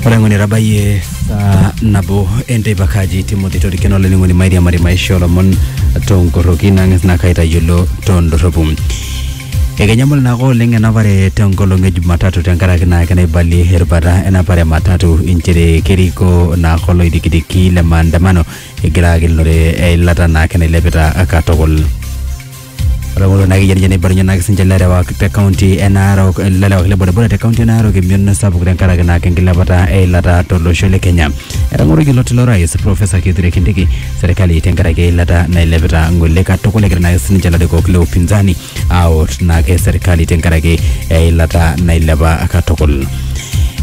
ore ng'oni etabayie saa nabo enteipa kaji timothy torikeno olainining'oni mairiamari maisha olomon tonkoroki nang'as naa kaitayiolo tondorropu ekenyamul naake oleng enapare tenkolong e jumatatu tenkaraki naake naibalie erubata enapare e matatu inchere keriko naake oloidikidiki le maandamano egira agelunore eilata naake nailepita katukul ore kulo naa keyieu neibalunyie naa sininche ilarewak te kaunti e Narok ilarewak le bodaboda te kaunti e Narok emion sapuk tenkaraki naa enkilepata eilata tolosho le Kenya. Etang'oroki ilo tilo rais Professor Kithure Kindiki serkali tenkaraki eilata nailepita ng'ole katukul egira naa sininche ilarikok le upinzani aawot naake serkali tenkaraki eilata nailepa katukul.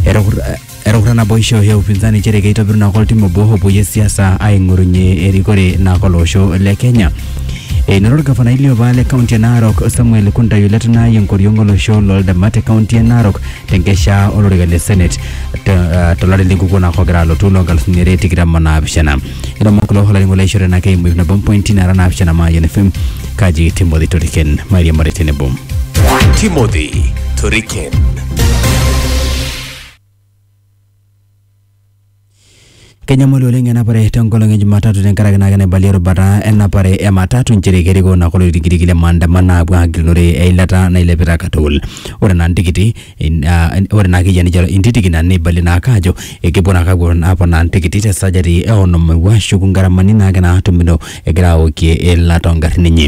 Etukur- Etukuta naboisho e upinzani nchere keitobiru nako oltim obo opuoyie siasa aing'orunye erikore nako olosho le Kenya. Enoto orgavanai liopa le kaunti e Narok Samuel Kuntayu Letunai enkoriong olosho loldama te kaunti e Narok tenkesha olorika le Senate te- eh, tolari lenkukuo nako ogira alotu loo nkalusuni are tikitam o naapishana. Ilomon kulo olainining'oni lai oishorita enake eimu ip nabo mpointi naara naapishana Mayian FM kaji Timothy Toriken mairiamari tenebo. Timothy Toriken. Kenyamali oleng enapare tenkolong e Jumatatu tenkaraki naa kenaibalie erubata enapare e matatu nchere kerikoo naa kulo tikitiki le maandamano aapuo aagilunore eilata nailepita katukul. Ore naa ntikiti, in- ah, ore naa akeyie ninche intitiki naa neibalie naake aajo ekepuo naake apuo aponaa ntikiti te sajati e onom ewuo ashuku ngaramani naake naatumito egira aokie eilata oo ngarrin enye.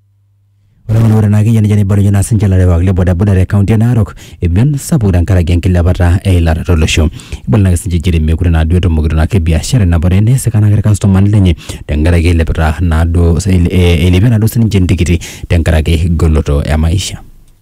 Ore ng'ole ore naa keyia nejia neibalunye naa sinche ilarewak le bodaboda te kaunti e Narok emion sapuk tenkaraki enkilepata eilata tolosho. Ibala naake sinche inchere meekure naaduo etumokito naake biashara enapare neisika naake irkastomani lenye tenkaraki eilepita naaduo eilepie naaduo sininche intikiti tenkaraki goloto e maisha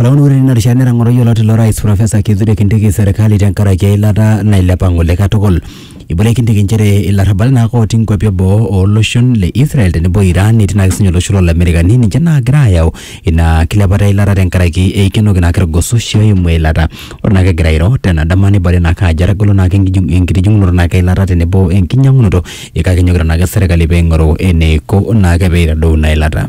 Olauni ore tina rishata netang'oro yioloti ilo rais Profesa Kithure Kindiki serkali tenkaraki eilata nailepa ng'ole katukul. Eibalie Kindiki nchere ilarrabali naake ootii nkuapi eboo o loshon le Israel tenebo o Iran netii naake sinye olosho loo Lamerikani ninche naagira aayau ina kilepata eilata tenkaraki eikenoki naake irgososhi oimu eilata. Ore naake egira airo tena dama neibalie naake ajo etagolo naake enkitijing'unoto naake eilata tenebo enkinyang'unoto kake enyokita naake serkali peing'oru eneiko naake peitadou ina ilata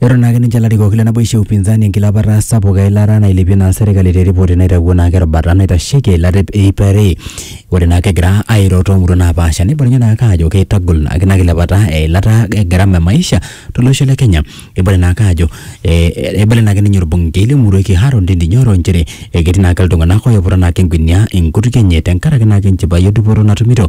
Eton naake ninche ilarikok le naboisho e upinzani enkilapata sapuk eilata nailepie naa serkali te ripoti naitawuo naake erubata naitasheki eilata e iip are. Ore naake egira airo too muruan napaasha neibalunyie naake aajo keitagol naake ina kilepata eilata e gharama e maisha to losho le Kenya. Eibala naake aajo eibala naake ninye olbunkei le murua e Kiharu Ndindi Nyoro inchere ketii naake iltung'anak oiputa naake engunia enkutuk enye tenkaraki naake enchipai o dupoto natumito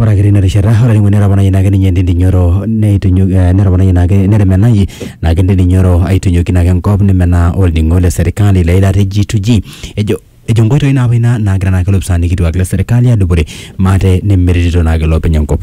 Ore ake tina rishata ore ake ninye netoponayie naake ninye Ndindi Nyoro neitinyiku eh netoponayie naake netemenayie naake Ndindi Nyoro aitinyiku naake enkop nemenaa olning'o le serkali le ira Rigi Tuju ejo ejo inkoitoi naapa ina naagira naake ilopisaani kituak le serkali adupore maate nemeretito naake iloopeny enkop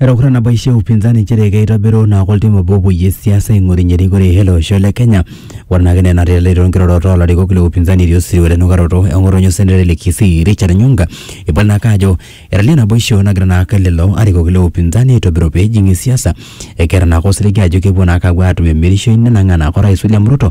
Etakuta nabo aishe upinzani nchere keitobiru naa oltim obo opoyie siasa aing'orunye erikore ele osho le Kenya. Ore naake ina enatejo too nkirorot oo larikok le upinzani etii osirua le nukaroto e ng'otonye osenetai le Kisii Richard Nyonga. Ibala naake ajo etalie naboisho nagira naake lelo arikok le upinzani aitobiru pee ejing siasa. Ekeeta naake osiligi ajo kepuo naake apuo atum emirishoi nenang'aa naake orais William Ruto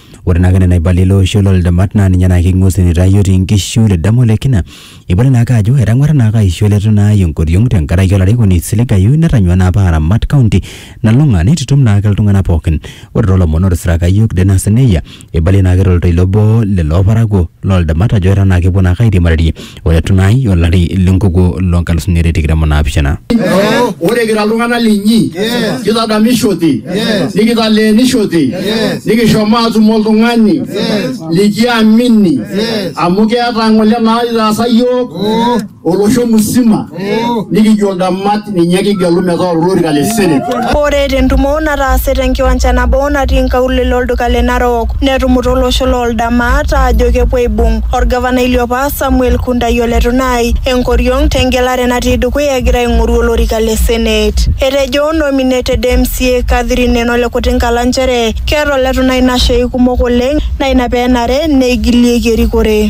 Ore naake nena aibalie ilo oishe loo ldamat naa ninye naake ing'ua osesen aitaa iyiok tii nkishu te damu ole kina. Ibala naake ajo etang'wara naake aisho ele tung'ani ai enkoriong' tenkaraki olarikoni oisiligayu netanyua naa apa aramat county nalulung'a neitutum naake iltung'anak pookin. Ore too lomon ootisiraka iyiok Dennis Neyia eibalie naake to ltoilo obo lelo parakuo loo ldamat ajo etaa naake epuo naake airiamarie ore tunai olari lenkukuo loo nkalusuni are tikitam o naapishana ore kira iltung'anak linyi kitadamishote nikitaleenishote nikishomo atum oltung'ani likiamini amu keeta ng'ole naitaasa yiok olosho musima nikijo ntamat ninye kigelu metaa olorika le seneti. Ore te ntumo nataase te nkiwanja nabo natii nkaulele olduka le Narok netumuta olosho loo Ldamaat aajo kepuo aibung olgavanai liopa Samuel Kundai o Letunai enkoriong te ngelare natii dukuya egira aing'oru olorika le senet. Etejo nominated MCA Catherine Eno le Kutinkala nchere keeta o Letunai nashei kumok oleng naa ina pee enare neigilieki erikore.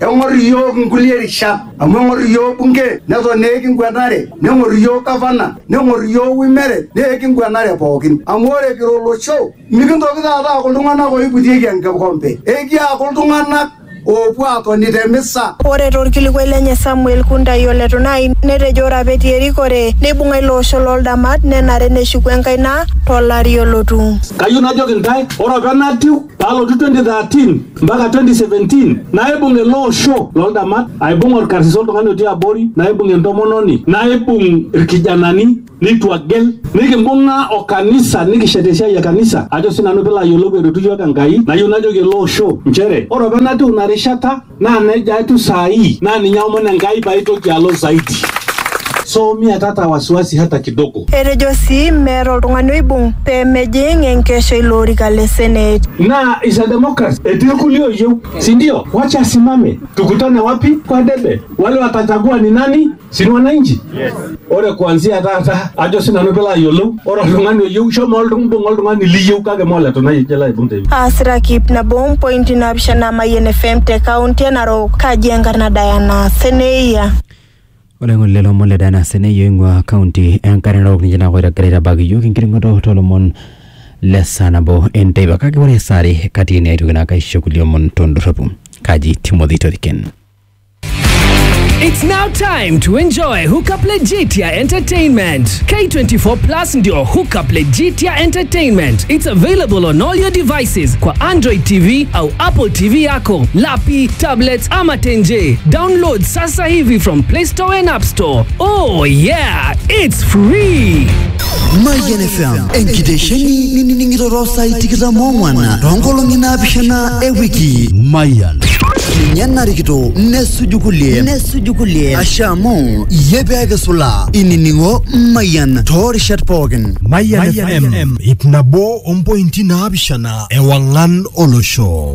Eng'or iyiook nkulie rishat amu eng'or iyiook bunge neton naa ekinguenare, neng'or iyiook gavana neng'or iyiook Womered naa ekinguenare pookin. Amu ore kira olosho mikintoki taata aaku iltung'anak ooiputieki enkikompe, ekiaku iltung'anak oopuo aatoni te misa. Ore to lkilikuai lenye Samuel Kuntai ole Tunai netejo ore apa etii erikore neibung'a ilo osho loo ldamat nenare neshuku enkaina to lari olotu. Kayieu najoki intae ore apa enatiu palotu 2013 mpaka 2017 naibung ele osho loldamat aibung orkarsis oltung'ani otii abori naibung entomononi naibung irkijanani nitu agel nikimbung'a o kanisa nikishet esiai e kanisa ajo sinanu pilo ayiolou eretu yiok enkai nayieu najoki ele osho nchere ore apa enatiu ina rishata naa nejia atiu saa hii naa ninye aomon enkai paitoki alo zaidi so mia tata wasiwasi hata kidogo Etejo sii meeta oltung'ani oibung pee mejing enkesho ilo orika le Senate. Naa is a democracy etii irkulie oyieu si ndio? Wacha asimame tukutane wapi? Kwa debe wale watachagua ni nani? Si ni wananchi? Ore kuanzia taata ajo si nanu pilo ayiolou ore oltung'ani oyieu shomo oltung mbung oltung'ani liyieu kake me ole Tonai oje ilo aibung te Aasita kip nabo o mpointi naapishana Mayian FM te kaunti e Narok. Kaji enkarna Diana Seneia. Ore ng'ole lomon le Diana Seneyu oing'ua kaunti e Nkare Narok ninche naa oigira aitabaki iyiok enkiring'oto too lomon le saa nabo e nteipa kake ore saa are kati ene aitoki naake aisho kulie omon to ndorropu. Kaji Timothy Toriken. It's now time to enjoy Hookup Legitia Entertainment. K24 Plus ndio Hookup Legitia Entertainment. It's available on all your devices kwa Android TV au Apple TV yako, lapi, tablets ama tenje. Download sasa Hivi from Play Store and App Store. Oh yeah, it's free. Mayian FM enkitesheni nining'iroro saai tikitam oong'wan toonkolong'i naapishana e wiki Mayian ninye narikito nesuju kulie nesuju kulie asha amu iyie peeke sulaa inining'o Mayian toorishat pookin Mayian FM ip nabo ompointi naapishana ewang'an olosho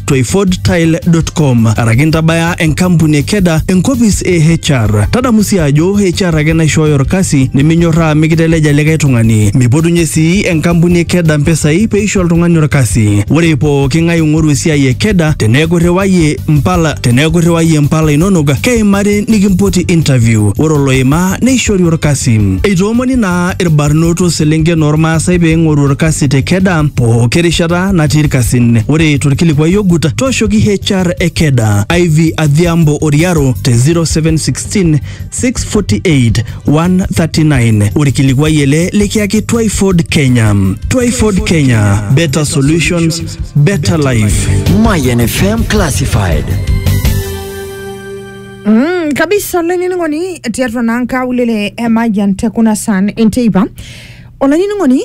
to ifordtile.com araki intabaya enkampuni e keda enkopis e HR. Tadamu sii ajo HR ake naishooyo orkasi niminyorraa mikiteleja likae tung'ani. Mipotunye sii enkampuni e keda mpisai peisho oltung'ani orkasi. Ore pooki ng'ae ing'oru esiai e keda teneeku irriwayie mpala teneeku irriwayie mpala inonok keimari nikimpoti interview. Ore oloimaa neishori orkasi. Eitoomoni naa irbarnot o selenken oormaasai pee eing'oru orkasi te Keda pooki rishata natii irkasin. Ore torkilikuai ogut, tooshoki HR e Keda, Ivy Adhiambo Oriaro te 0716 648 139. Orkilikuai ele likiyaki Twyford Kenya. Twyford Kenya, better solutions, better life. Mayan FM Classified. Mm, kabisa olainining'oni tiatua naa nkaulele e Mayian te kuna san enteipa olainining'oni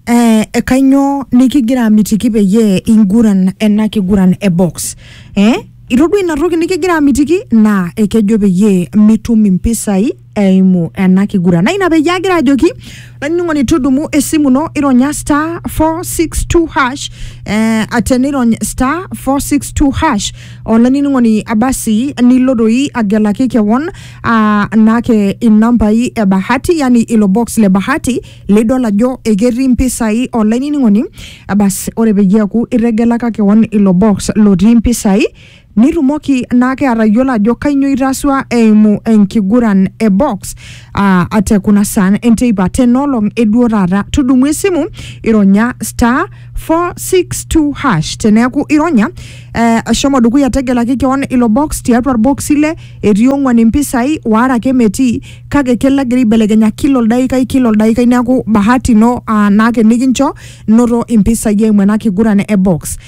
eh, e kainyoo nikigira amitiki peyie inguran ena kiguran e box eh? itodua ina toki nikigira amitiki naa ekejo peyie mitum impisai eimu ena kiguran na ina peyie agira ajoki olainining'oni tudumu esimu ino ironya star 462 hash eh, tenirony star 462 hash olainining'oni abasi nilo doi agelaki kewon ah, naake inambai e bahati yani ilo box le bahati lidol ajo eketii mpisai olainining'oni abasi ore peyie eaku itegelaka kewon ilo box lotii mpisai Nitumoki naake atayiolo ajo kainyoo itasua eimu enkiguran e box aa uh, te kuna saan enteipa tenolong eduo taata. Tudumu esimu ironya star 462 hash teneeku ironya uh, shomo dukuya tegelaki kewon ilo box tiatua irboksi ile etii ong'uan impisai waare ake metii kake kelo egira aibelekenya kila oldaikai kila oldaikai neeku bahati ino uh, naake nikincho noto impisai eimu ena kiguran e box.